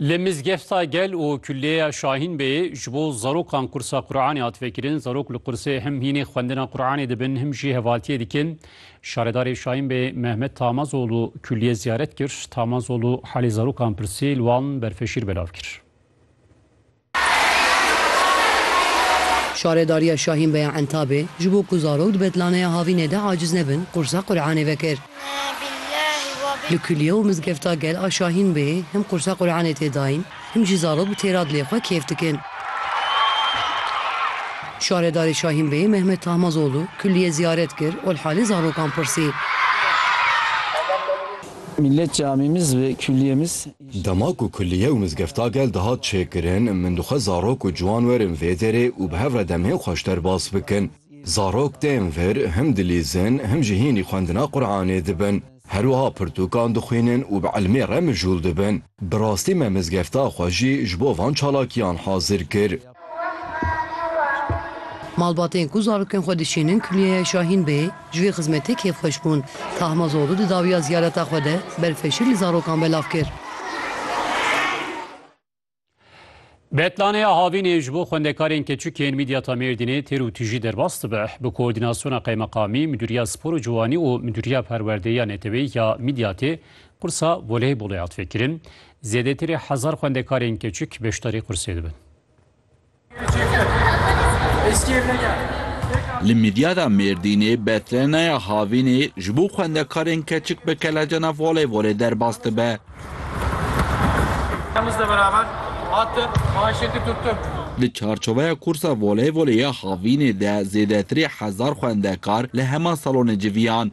Li Mizgefta Gel û Kulliyeya Şahînbeyê ji bo zarokan kursa Quranê hat vekirin. Zarok li kursê him hînê xwendina Quranê dibin him jî hevaltiyê dikin. Şaredarê Şahînbeyê Mehmet Tamazoglu kulliye ziyaret kir. Tamazoglu halê zarokan pirsî li wan berfeşîr belav kir. Şaredariya Şahînbeya Entabê ji bo ku zarok di betlaneya havînê de aciz nebin qursa Quranê vekir. Li Kulîye û Mizgefta Gel a Şahînbeyê him qursa Quranê tê dayîn him jî zarok bi têra dilê xwe kêf dikin. Şaredarê Şahînbeyê Mehmet Tahmazoglu kulîye ziyaret kir û li halê zarokan pirsî. Millet camimiz ve kuliyemiz. Dema ku kulîye û mizgefta gel dihat çêkirin, min dixwest zarok û ciwan werin vê derê û bi hev re demhên xwe ji derbas bikin. Zarok tên vir him dilîzin him jî hînî xwendina Quranê dibin. Her wiha pirtûkan dixwînin û bi ilmê re mijûl dibin. Bi rastî me mizgefta xwe jî ji bo van çalakiyan hazir kir. Malbatên ku zarokên xwe dişînin Kulîyeya Şahîn Bey ji vê xizmetê kêfxweş bûn. Tahma Zodu di dawiya ziyareta xwe de berfeşîg li zarokan belav kir. Betlaneya havînê ji bo xwendekarên keçik yên Midyata Mêrdînê têr û tijî derbas dibe. Bi koordînasyona qeymeqamî, Midûriya Spor û Ciwanî û Midûriya Perwerdeya Neteweyî ya Midyatê qursa voleybolê hat vekirin. Zêdetirê hezar xwendekarên keçik beşdarî qursê dibin. Li Midyada Mêrdînê betreneya havînê ji bo xwendekarên keçik bi kelecana voleybolê derbas dibe. Di çarçoveya kursa voleybolê ya havînê de zêdetirê hezar xwendekar li hema salonê civiyan.